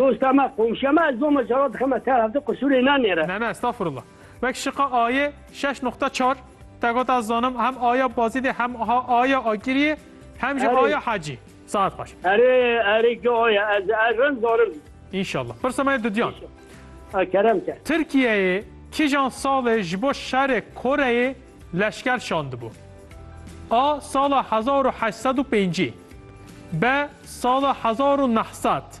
Dosta me, komşiya me, ez zoma cala dixeme te hevdî qisûrê ne nêre. Ne ne estağfurullah. Wek şiqa ayê şeş noqta çar te got ez zanim hem aya Bazidê hem ha aya Agiriyê hem jî Erê. aya Hecî. Saet xweş. Erê erê gi aya ez ez rind zanim. Înşallah. Pirsa me ye Dudyan. A kerem ke. Tirkiyeyê kijan salê ji bo şerê Koreyê leşker şandibû? A sala hezar û heşt sed û pêncî B sala hezar û neh sed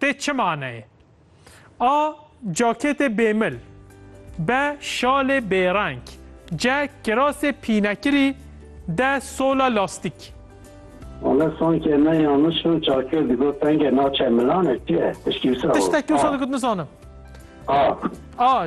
Tê çi maneyê? A. Cakêtê bêmil B. Şalê bêreng C. Kirasê pînekirî D. Sola lastîk. Wala sanki me yanlış bin çakir digot penge naçe milanek çi ye? Tiştî wisa bo. Tiştekî wisa digot nizanim. A. A.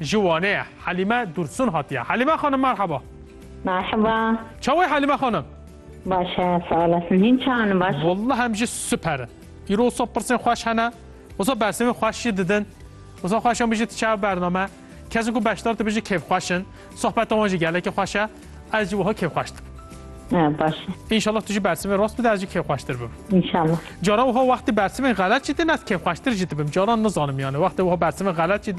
Ji Wanê ye. Helîme Dursun hatiye. Helîme xanim merheba. Merhaba. Çawe Helîme xanim? Baş e, sağ olasın. Hîn çawan baş? Wallah em jî super in. Îro wisa pirsên xweş hene. Wisa bersivên xweş jî didin. Wisa xweş em bijî tu çawe bername. Kesên ku beşdar dibin jî kêfxweş in. Sohbeta wan jî gelekî xweş e. Ez jî wiha kêfxweş dibim. Ha, baş e. İnşallah tu jî bersivên rast bide ez jî kêfxweştir bibim. İnşallah. Cara wiha wextê bersivên xelet jî din ez kêfxweştir jî dibim. Caran nizanim yani wextê wiha bersivên xelet jî didin.